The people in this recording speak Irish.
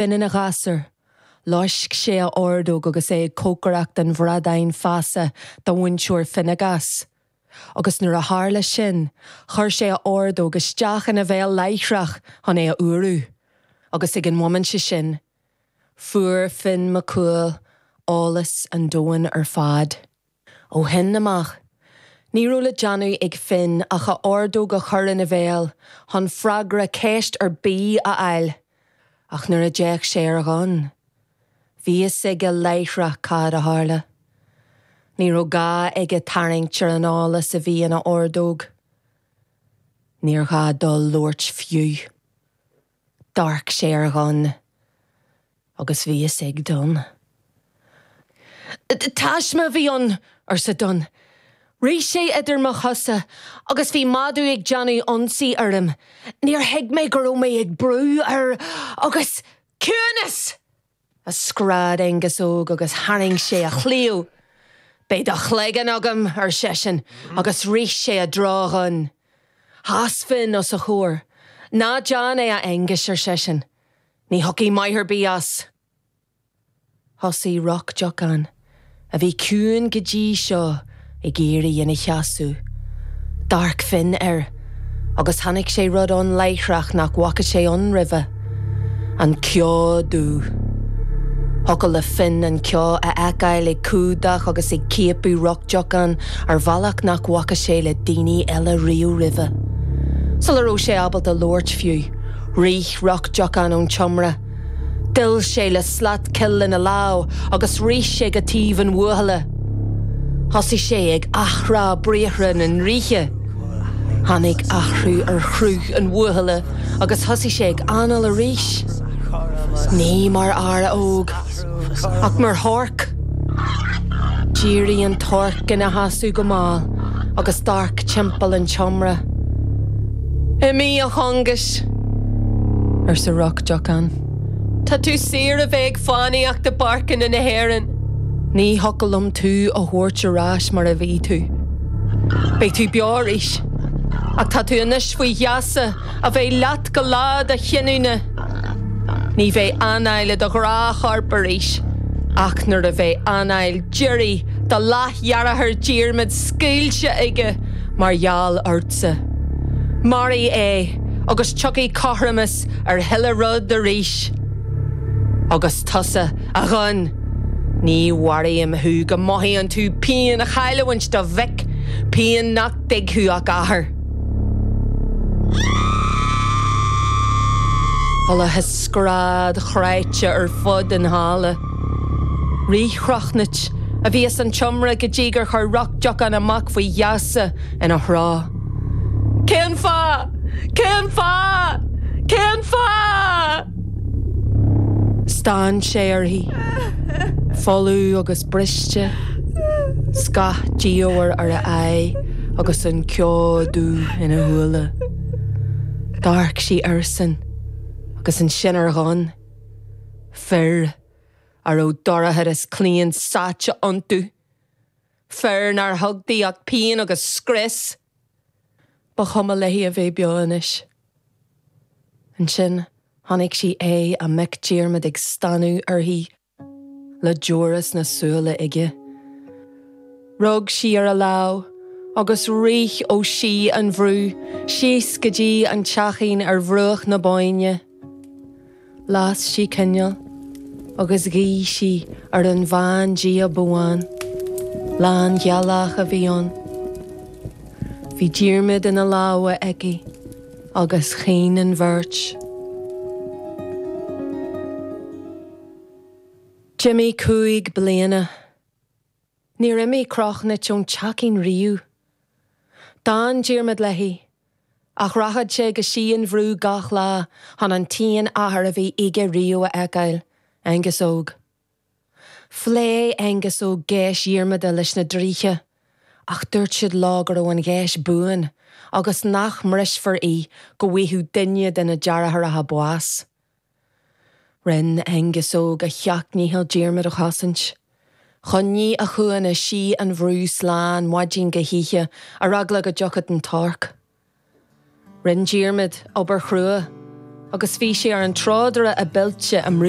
binn ina ghasúr. Loisc sé a ordóg agus é ag cócaireacht an bhradáin feasa dá mhúinteoir Finnegas, agus nuair a tharla sin chuir sé a ordóg isteach ina bhéal láithreach chun é a fhuarú, agus ag an mhóimint sin fuair Finn MacCumhail eolas an domhain ar fad. Ó shin amach, ní raibh le déanamh ag Finn ach a ordóg a chur ina bhéal chun freagra ceist ar bith a fháil, ach nuair a d'fhéach sé ar Dhonn, bhí a fhios aige láithreach cad a tharla. Ní raibh gá aige tarraingt ar an eolas a bhí ina ordóg. Níor ghá dó labhairt fiú. D'amharc sé ar Dhonn agus bhí a fhios ag Donn. Taisme a bhí ann! arsa Donn. Rith sé idir mo chosa agus bhí madadh ag déanamh ionsaí orm. Níor thuig mé go raibh mé ag brú air agus. Ciúnas! a scread Aonghas Óg agus tharraing sé a chlaíomh. Beidh do chloigeann agam, ar seisean, agus rith sé i dtreo Dhoinn. Sheas Finn os a chomhair. Ná déan é, a Aonghuis, ar seisean. Ní thiocfaidh maith ar bith as. Thosaigh Roc Deocán. a bhí ciúin go dtí seo ag éirí ina sheasamh. D'amharc Finn air agus chonaic sé rud ann láithreach nach bhfaca sé ann roimhe. An ceo dubh. Thiocfadh le Finn an ceo a fheiceáil ag cumhdach agus ag ciapadh Roc Deocán ar bhealach nach bhfaca sé le daoine eile riamh roimhe. Sula raibh sé ábalta labhairt fiú, rith Roc Deocán ón tseomra. D'fhill sé le slat coill ina lámh agus rith sé go taobh an bhuachalla. Thosaigh sé ag athrá briathra na ndraoithe. Tháinig athrú ar chruth an bhuachalla agus thosaigh sé ag análú arís. Ní mar fhear óg. Ach mar thorc, d'éirigh an torc ina sheasamh go mall agus d'amharc timpeall an tseomra. Imigh, a Chongais! arsa Roc Deocán. Tá tú saor a bheith ag fánaíocht i bpáirceanna na hÉireann. Ní thiocfadh liom tú a thabhairt ar ais mar a bhí tú. Beidh tú beo arís, ach tá tú anois faoi gheasa. a bheidh leat go lá do chinniúna. Ní bheidh anáil i do ghnáthchorp arís ach nuair a bheidh anáil deiridh do leathdheartháir Diarmaid scaoilte aige mar gheall ortsa. Maraigh é agus tiocfaidh cothromas ar chuile rud arís. Agus tusa, a Dhoinn, ní mharóim thú go mothaíonn tú pian chailliúint do mhic, pian nach dtuigfeadh ach athair. Chualathas scread chráite ar fud an halla. Rith Crochnuit a bhí as an tseomra go dtí gur chuir Roc Diocain a mac faoi gheasa ina threo. Cén fáth? Cén fáth? Cén fáth? Stán sé uirthi. Folamh agus briste, scáth diamhair ar a aghaidh agus an ceo dubh ina shúile. D'amharc sí airsean agus ansin ar Dhonn. Fir a raibh dorchadas claon sáite iontu. Fir nár thug di ach pian agus scrios. Ba chuma léi a bheith beo anois. Ansin chonaic sí é, a mac Diarmaid ag stánadh uirthi le deora sna súile aige. Rug sí ar a lámh agus rith ó Sí an Bhrú síos go dtí an teachín ar bhruach na Bóinne. Las sí coinneal agus ghuigh sí ar an bhandia Bóann. Lánghealach a bhí ann. Bhí Diarmaid ina lámha aici agus chaoin an bheirt. D'imigh cúig bliana. Níor imigh Crochnuit ón teachín riamh. D'fhan Diarmaid léi Ach rachadh sé go Sí an Bhrú gach lá chun an t-aon athair a bhí aige riamh a fheiceáil, Aonghus Óg. Phléigh Aonghus Óg geis Dhiarmada leis na draoithe, ach dúirt siad leo go raibh an gheis buan agus nach mbrisfear í go bhfaigheadh duine de na deartháireacha bás. Rinn Aonghus Óg a sheacht ndícheall Diarmaid a chosaint. Choinnigh a chúnna Sí an Bhrú slán maidin go hoíche ar eagla go dtiocfadh an torc. Rinn Diarmaid obair chrua agus bhí sé ar an trodaire ab oilte i mBrú.